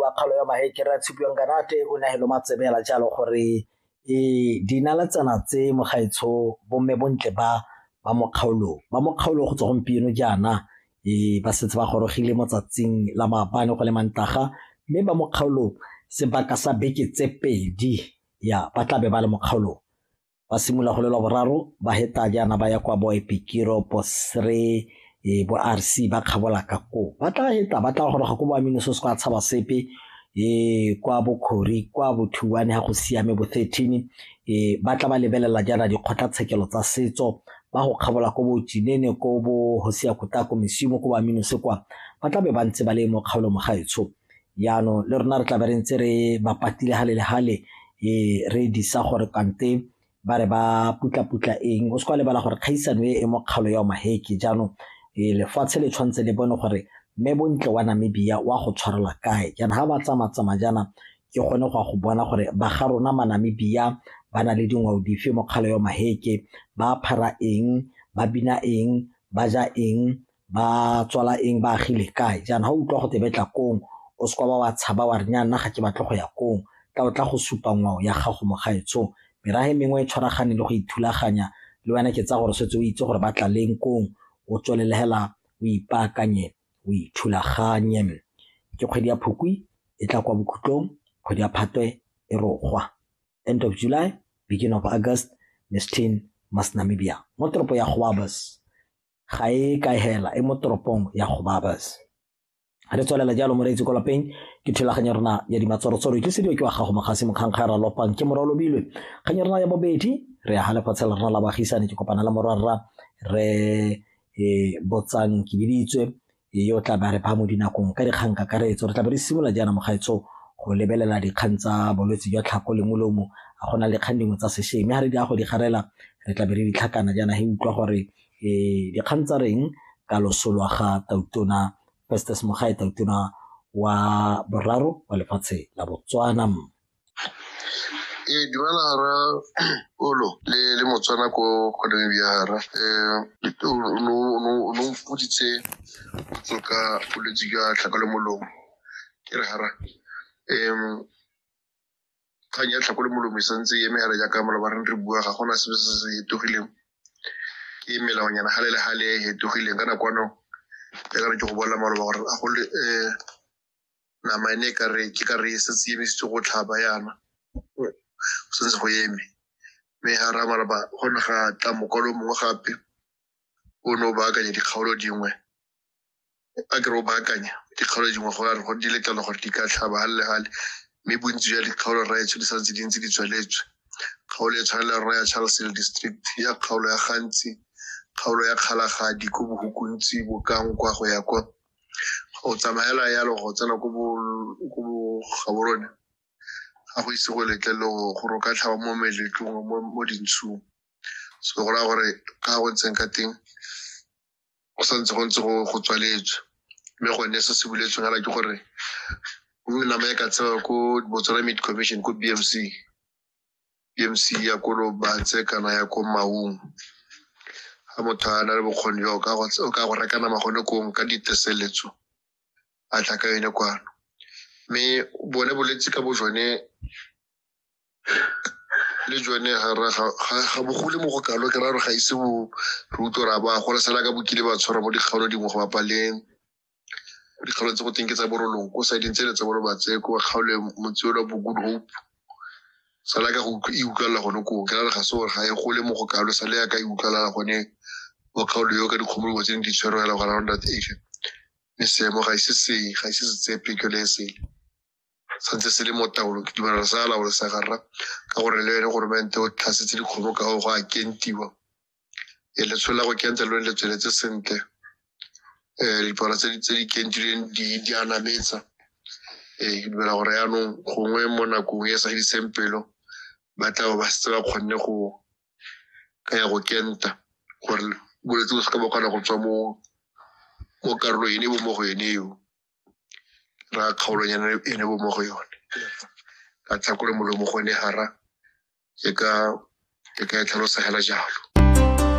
wa kgaolo ya mahekere a tshupiwang kanate o nagelo matsebe ela jalo gore e dinaletsana tse mogaetsho bomme bontle ba ba mo kgaolong ba mo kgaolong go tswa gompieno jaana e ba setse ba gorogile mo tsatsing la maabane go le mantaga mme ba mo kgaolong sebaka sa beke tse pedi ya ba tlabe ba le mo kgaolong ba simolola go le lwa boraro ba heta jaana ba ya kwa bo epikiro bosre e bo rc ba kgabola ka koo ba tla heta ba tla goroga ko bo aminoso se kwa tshaba sepe e kwa bokgori kwa bothuane ga go siame bo 13 e ba tla ba lebelela jaana dikgotlatshekelo tsa setso ba go kgabola ko botsinene ko bo go sia kota ko mesimo ko ba minose kwa ba tla be ba ntse ba le mo kgaolo mo gaetsho Jaanong le rona re tla be re ntse re ba patile gale le gale e re disa gore kante ba re ba putla-putla eng o se kwa lebala gore kgaisano e e mo kgalo ya omaheke jaanong e lefatshe le tshwanetse le bone gore mme bontle wa namibia wa go tshwarelwa kae jaana ga ba tsamatsama jaana ke gone go ya go bona gore ba ga rona manamibia ba na le dingwao dife mo kgalo ya omaheke ba phara eng ba bina eng ba ja eng ba tswala eng ba agile kae jaana ga o utlwa go te betla kong o se kwa ba wa tshaba wa re nya nna ga ke batle go ya kong tla o tla go supa ngwao ya gago mo gaetsong merage mengwe e tshwaragane le go ithulaganya le wena ke tsa gore setse o itse gore ba tla leng kong o tswelele hela o ipaakanye o ithulaganye ke kgwedi ya phukwi e tla kwa bokhutlong kgwedi ya phatwe e rogwa end of july beginning of august miss tin mas namibia mo toropo ya goabas ga e ka hela e mo toropong ya gobabas re tswelela jalo moreetsi ko lapeng ke thulaganyo rona ya dimatshwarotswaro ke sediwa ke wa gago mogase mokgankga ya ralopang ke morwa lobilwe kgang ya rona ya bobedi re ya ga lefatshe la rona la bagisane ke kopana le morwarra re e botsang ke biditswe Ee, o tla ba re ba mo dinakong ka dikgang kakaretso. Re tla be re simolola jaana mogaetso go lebelela dikgang tsa bolwetse jwa tlhako le molomo a go na le kgang dingwe tsa sešweng mme ga re di a go di garela re tla be re ditlhakana jaana he utlwa gore um dikgang tsa reng ka loso lwa ga tautona festes mogae tautona wa boraro wa lefatshe la botswana ee dumela ra olo le le motswana ko go namibia ra um no mpoditse tso ka bolwetse jwa tlhako le molomo ke re hara um kgang ya tlhako le molomo e santse e eme hara jaaka maloba re bua ga gona sebe se se hetogileng ke melaonyana gale le gale e hetogileng ka nakwano ya ka re ke go bolela maloba gore a go le um nama ene e ka re ke ka re e setse e emisitse go tlhaba yana go sentse go eme mme ga ra malaba go ne ga tla mokwalo mongwe gape o ne o baakanya dikgaolo dingwe a kere o baakanya dikgaolo dingwe go re go di letlelwa gore di ka tlhaba ga le gale mme bontsi jwa dikgaolo raya tsho di sa ntse di ntse di tsweletswe kgaolo e tshwanela raya charles hill district ya kgaolo ya gantsi kgaolo ya kgalagadi ko bohukuntsi bokang kwa go ya kwa go tsamaela yalo go tsena ko bo- ko bogaborone ga go ise go letlele go gore o ka tlhaba mo meletlong mo mo dintshung so go raya gore ka go ntseng ka teng go sa ntse go ntse go go tswaletswe mme gone se se buletsweng ala ke gore o nama e ka tsewa ko botswana meat commission ko b m c PMC ya ko Lobatse kana ya ko Maung ga motho a na le bokgoni jwa o ka go- o ka go reka nama gone kong ka diteseletso a tla ka yone kwano mme bone bolwetse ka bo jone le jone ga ra- ga- ga ga bogole mo go kalo ke ra re ga ise bo re utlwe ra ba gola sala ka bokile ba tshwara mo dikgaolo dingwe go bapa le dikgaolo tse go teng ke tsa borolong ko siding tsele tsa borobatse ko kgaolo ya motseolo wa bogood hope sala ka go e utlwalela gone koo ke rare ga se gore ga e gole mo go kalo sale ya ka e utlwalela gone mo kgaolo yo ka dikgomologo tse ne di tshwerwela go around that age mme seemo ga ise se ga ise se tsepe ke le e sele santse se le mo taolong ke dumelana sa laolo sa garra ka gore le ene goromente o tlhasetse dikgomo ka go go a kentiwa e letsholo la go kenta lo le tsweletse sentle um dipalo tse di- tse di kentilweng di di a nametsa ee ke dumela gore yaanong gongwe mo nakong e e sa fediseng pelo ba tla bo ba setse ba kgonne go ka ya go kenta gore bolwetse bo se ka ba kgona go tswa mo mo karolo ene bo mo go ene eo ra kgaolonyana e ne bo mo go yone ka tlhakole molomo go ne hara ke ka e tlhalosa hela jalo